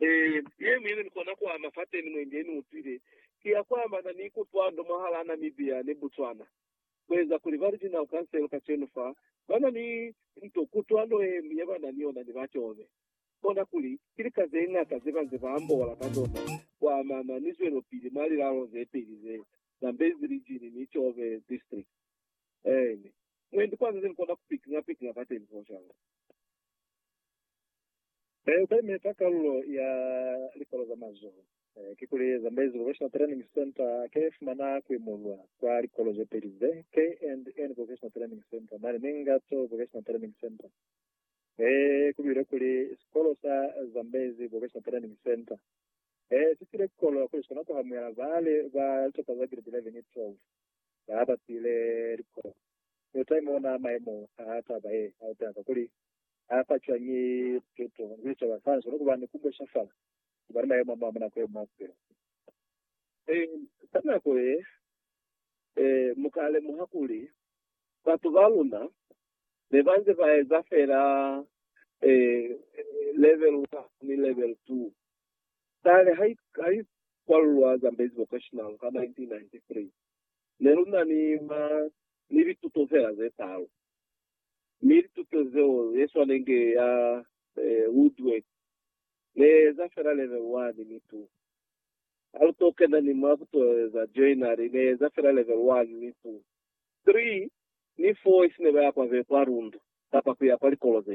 Ee, ye mwi ni kona ku ama fateni mwendi ni utwile ki ya ku amana ni kutwando mwahalaa Namibia ni Botswana. Ku eza kuli ba Regional Council kacenu fa ba na ni nto kutwando ye ñwi ye ba na ni yona ni ba Tjobe. Kona kuli ki lika ze ñata ze ba nze ba ambola ka zona ku amana ni zwelopili mwa lilalo ze peli ze, Zambezi Region ni Tjobe District. Ee, ni mwendi kwa ze ni kona ku pikinga pikinga fateni, Foshang. Ee, ba imeta kalulo ya likolo za mazoho. Kikuli Zambezi Vocational Training Centre ke ya fumana kuimulwa kwa likolo ze peli ze, KNN Vocational Training Centre mane ni Ngatso Vocational Training Centre. Ee, ku builwe kuli, Sikolo sa Zambezi Vocational Training Centre ee si file kolo kuli si kona ku hamuela baali ba litopa za Giredi 11 ni 12 ba ba siile likolo. Ni uta imona maemo a taba ye a utela kakuli ha fa cwañi lupeto ku sicaba sa hae? Ni kuba ni ku bocafala ku ba ni mayemo a mañwi nako ye mwa bupilo. Ka nako ye, mu ka lemuha kuli batu ba luna ne ba nze ba eza feela Level 1 ni Level 2. Kale ha i kwalulwa Zambezi Vocational ka 1993, ne lu na ni mwa ni lituto feela ze talu. Mi lituto zeo yeswanenge ya Woodworth ne eza fela level one mi tu haluto kena ni mwa kutoeza joinari ne eza fela level one mi tu three ni four isine baya kwa be kwa Rundu kapa kuya kwa likolo zene.